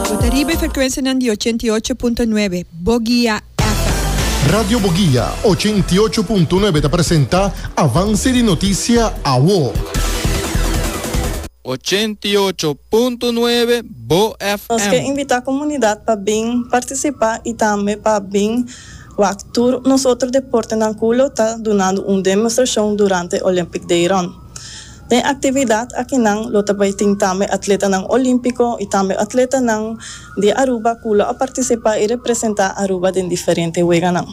Bo ta riba e frekuensianan di ochenta i ocho punto nuebe, Bogia FM. Radio Bogia ochenta i ocho punto nuebe ta presenta Avance di Noticia Awo. Ochenta i ocho punto nuebe, Bo Nos ke FM. invita komunidat pa bin partisipa i tambe pa bin wak tur nos otro deportenan ku lo ta dunando un demostrashon durante Olympic Deiron. Den actividad akinan lo ta bay tin tambe atletanan Olimpico y tambe atletanan di Aruba cu lo a participa y representa Aruba den diferente weganan.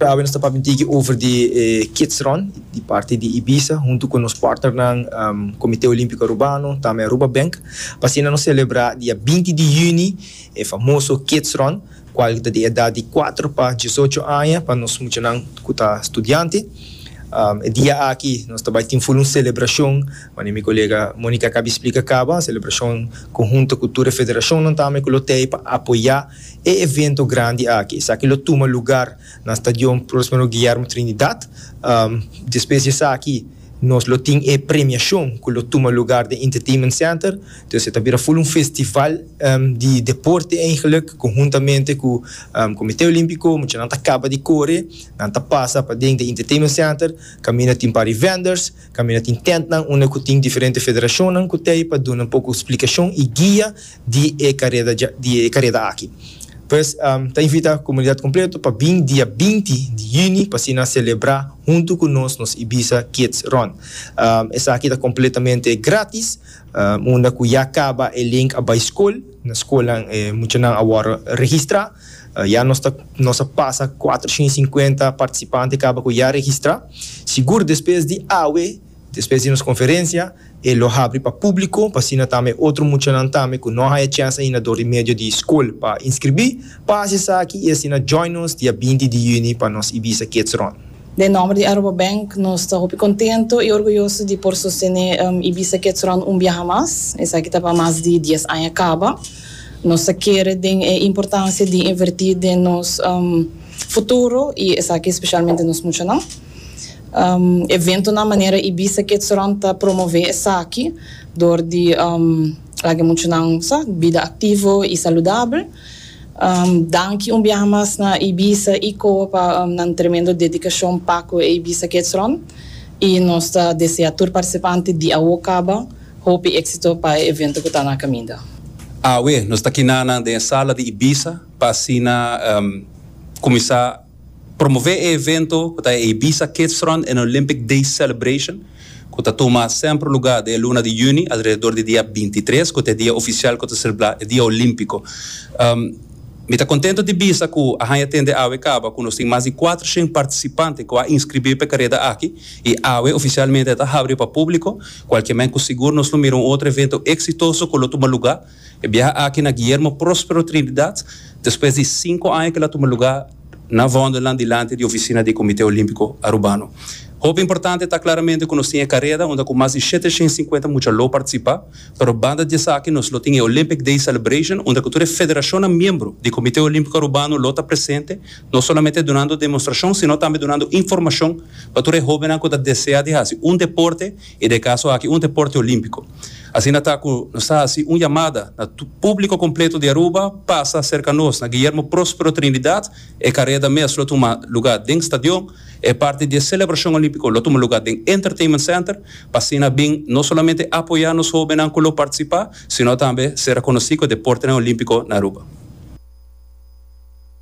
Awe nos ta papia un tiki over di e Kids Run di parti di Ibiza hunto cu nos partnernan Comite Olimpico Arubano tambe Aruba Bank pa asina nos celebra dia binti di juni e famoso Kids Run. kual ta di edat di kuater pa diesocho aña pa nos muchanan ku ta studiante. E dia aki nos ta bai tin full un selebrashon, manera mi kolega Monica a kabi splika kaba, un selebrashon konhunto ku tur e federashonnan tambe ku lo tei pa apoyá e evento grandi aki. Esaki lo tuma lugar na Stadion Prospero Guillermo Trinidad. Despues di esaki. Nos lo tin e premiashon ku lo tuma lugar den Entertainment Center. Entonces e ta bira ful un festival di deporte eigenlik ku huntamente ku Komite Olimpiko muchanan ta kaba di kore, nan ta pasa paden di Entertainment Center kaminda tin par di vendors, kaminda tin tentnan unda ku tin diferente federashonnan ku ta ei pa duna un poko splikashon i guia di e kareda dja di e kareda aki. Pues ta invita komunidat kompleto pa bin dia binti di yüni pa asina selebrá huntu ku nos nos Ibiza Kids Run. Esaki ta kompletamente grátis unda ku ya kaba e link a bai skol, na skolnan e muchanan a wòrdu registrá. Ya nos ta nos a pasa kuatrocientosinkuenta partisipante kaba ku ya registrá. Sigur despues di awe Despues di nos conferencia e lo habri pa publico, p'asina tambe e otro muchanan tambe cu no haya chance ainda dor di medio di scol pa inscribi, pa haci esaki y asina join nos dia binti di juni pa nos Ibiza Kids Run. Den nomber di Aruba Bank nos ta hopi contento y orguyoso di por sostene Ibiza Kids Run un biaha mas. Esaki ta pa mas di dies aña caba. Nos ta kere den e importancia di inverti den nos futuro y esaki specialmente nos muchanan. Eventonan manera Ibiza Kids Run ta promové esaki dor di laga e muchanan sa bida aktivo i saludabel. Danki un biaha mas na Ibiza i Koa pa nan tremendo dedikashon pa ku e Ibiza Kids Run i nos ta desea tur partisipante di awo kaba hopi éksito pa e evento ku ta na kaminda. Awe nos ta kina nan den e sala di Ibiza pa asina kuminsá. Promové e evento ku ta e Ibiza Kidsrun en Olympic Days Celebration ku ta tuma semper lugá den e luna di yüni alrededor di dia bintitres ku ta e dia ofisial ku ta selebrá e dia olímpiko. Mi ta kontentu di bisa ku a haña tende awe kaba ku nos tin mas di kuater shen partisipante ku a inskribí pa e kareda aki i awe ofisialmente ta habri pa públiko, kualke men ku sigur nos lo mira un otro evento eksitoso ku lo tuma lugá. E biaha aki na Guillermo Prospero Trinidad, despues di sinku aña kil a tuma lugá na Vondelland dilanti di ofisina di e Comité Olímpico Arubano. Hopi importante ta claramente cu nos tin e careda unda cu mas di shete shen sinkuenta mucha lo participa, pero banda di esaki nos lo tin e Olympic Day Celebration unda cu tur e federacionnan miembro di Comité Olímpico Arubano lo ta presente, no solamente dunando demostracion sino tambe dunando informacion pa tur e hobennan cu ta desea di haci un deporte. E de caso aki un deporte olimpico. Asina ta cu nos ta haci un yamada na publico completo di Aruba pasa cerca nos na Guillermo Prospero Trinidad. E careda mes lo tuma lugar den stadion. E parti di e celebracion olimpico lo tuma lugar den Entertainment Center pa asina bin no solamente apoya nos hobennan cu lo participa sino tambe ser reconoci cu e deportenan olimpico na Aruba.